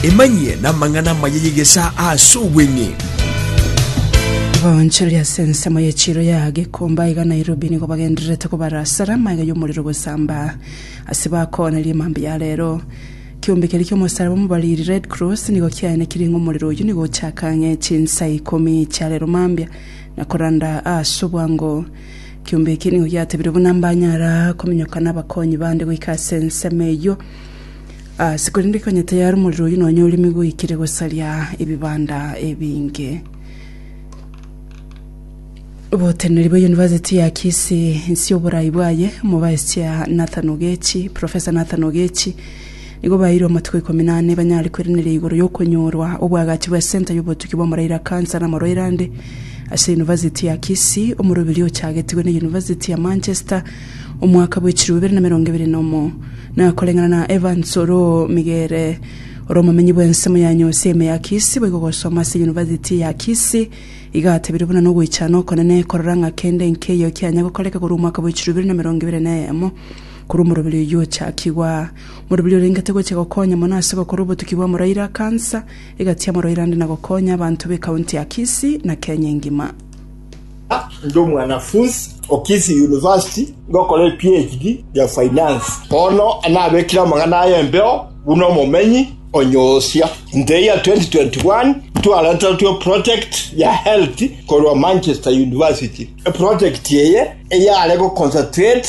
Emanyie namang'ana amaya y'egesaa aase obweng'e. Abaonchori ase ensemo ye chiiro ya Gikomba iga Nairobi nigo bagendererete kobara asara amaiga y'omorero gosamba ase bakoonerie mambia ya rero. Kiombe keria ki'omosaraba omobariri, Red Cross, nigo kiaenekirie ng'a omorero oyio nigo ochaka ang'e chinsa ikomi chia rero mambia na koranda aase obwango. Kiombe eke nigo giatebire buna mbanyara kominyoka nabakonyi bande goika ase ensemo eyio ase korende konya tayari omorero oyio nonya oremi goikire gosaria ebibanda ebinge. Oboteneneri bwa University ya Kisii inse oborai bwaye, Omobaisia Nathan Ogechi, Professor Nathan Ogechi, Nigo baeirwe amatuko ikomi na ane banyare kweraneria igoro y'okonyorwa obwagachi bw'esenta y'obotuki bw'omorairo a kansa na amarwaire ande ase University ya Kisii, omoroberio ochagetigwe na University ya Manchester omwaka bwe chiruu bibere na emerongo ebere na omo. Na koreng'ana na Evans Oromigere, ore omomenyi bw'ensemo ya Nyoseme ya Kisii, boigo gosoma ase University ya Kisii iga atebirie buna nogoichana okonene korora ng'a kende nkeiyo kianya gokoreka korwa omwaka bwe chiruu bibere na emerongo ebere na eyemo. Korwa omoroberi oyio ochakigwa, moroberi orengete gochia gokonya mono ase gokora obotuki bwa Muraira, kansa egatiama Muraira ande na gokonya abanto be county ya Kisii na Kenya engima. Ndi omwanafunsi o Kisii University ngokora e PHD ya Finance. Bono nabekire amang'ana aya embeo buna omomenyi o Nyosia. In the year 2021, twaretertwe eproject ya health korwa Manchester University. Eproject eye eyare goconcentrate